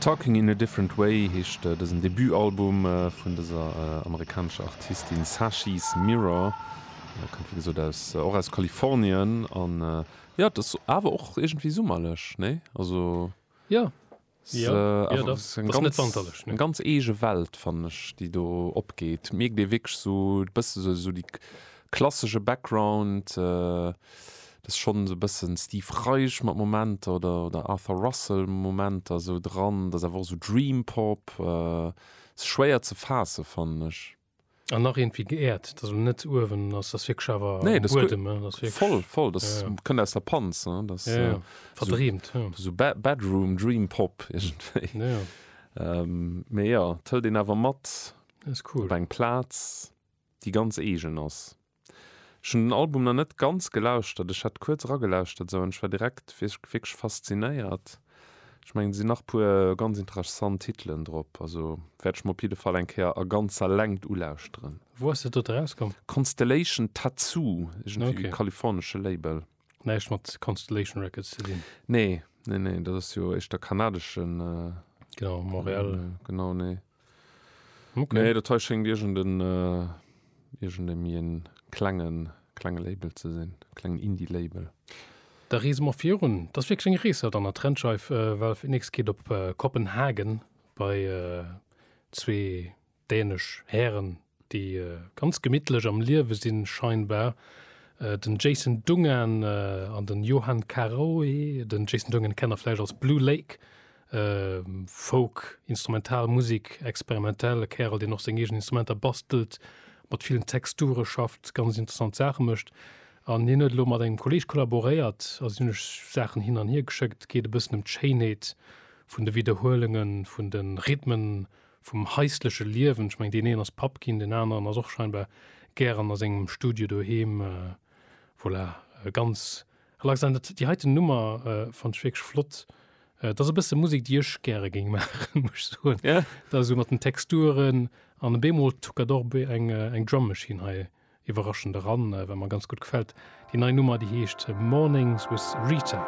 Talking in a Different Way heescht dësen Debutalbum vun dëser amerikanescher Artistin Sashi's Mirror. Kënnt wéi gesot aus, och aus Kalifornien an jo et ass awer och iergendwéi summerlech, nee? Also jo, jo, jo dach, ass net wanterlech, nee. Eng ganz eege Welt fannen ech déi do opgeet, mierkt ee wierklech sou e bësse sou déi Klassesche Background, dat ass schonn esou e bëssen Steve Reich mat Momenter oder oder Arthur Russell Momenter esou dran, dat ass awer och esou Dream Pop, ass schwéier ze faassen fannen ech. An nach iergendwéi geäert, dat ass elo net uewen, ass ass wierklech awer am Buedem, dat ass wierklech. Voll, voll, dat kënnt aus der Panz, dat ass verdreemt, esou Bedroom Dream Pop iergendwéi. Mee jo, et hëlt een awer mat op eng Plaz. déi ganz eegen ass. Ech hunn den Album nach net ganz gelauschtert, ech hat kuerz eragelauschtert esou, an ech war direkt wierklech faszinéiert. Ech mengen et sinn nach puer ganz interessant Titelen drop, also wäert ech mer op jidde Fall eng Kéier a ganzer Längt ulauschteren. Wou ass dat dote erauskomm? Constellation Tattoo, iergendwéi e kalifornesche Label. Näischt mat Constellation Records ze dinn? Nee, nee, nee, dat ass jo éischter kanadeschen. Genau, Montréal. Genau, nee. Okay. Nee, dat hei schéngt irgend en, äh, irgend e mi en klengen, klenge Label ze sinn, klengen Indie-Label. Da reese mer virun. Dat ass wierklech eng Rees haut an der Trendscheif. Valve Index geet op Kopenhagen bei zwee dänesch Hären, déi ganz gemittlech am Liewe sinn scheinbar, den Jason Dungan an den Johan Caraoe, den Jason Dungan kennt der vläicht als Blue Lake, Folk, instrumental Musik, experimentell, e Kärel deen och seng eegen Instrumenter bastelt, mat villen Texture schafft, ganz interessant Saache mécht an hien huet elo mat engem Kolleeg kollaboréiert a si hunn sech Saachen hin an hier geschéckt, geet e bëssen ëm d'Schéinheet vun de Widderhuelunge vun de Rhythmen vum haisleche Liewen. Ech mengen, deen een ass Papp ginn, deen aneren ass och scheinbar gären a sengem Studio doheem. Voilà, ganz relax. An dat, déi heiten Nummer fannt ech wierklech flott. Dat ass e bësse Musek, déi ech gäre géing maachen, muss ech soen. Ja. Dat esou mat den Texturen an op eemol tuckert och be eng, eng Drum Machine hei iwwerraschend eran, wat mer ganz gutt gefält. Déi nei Nummer, déi heescht Mornings with Rita.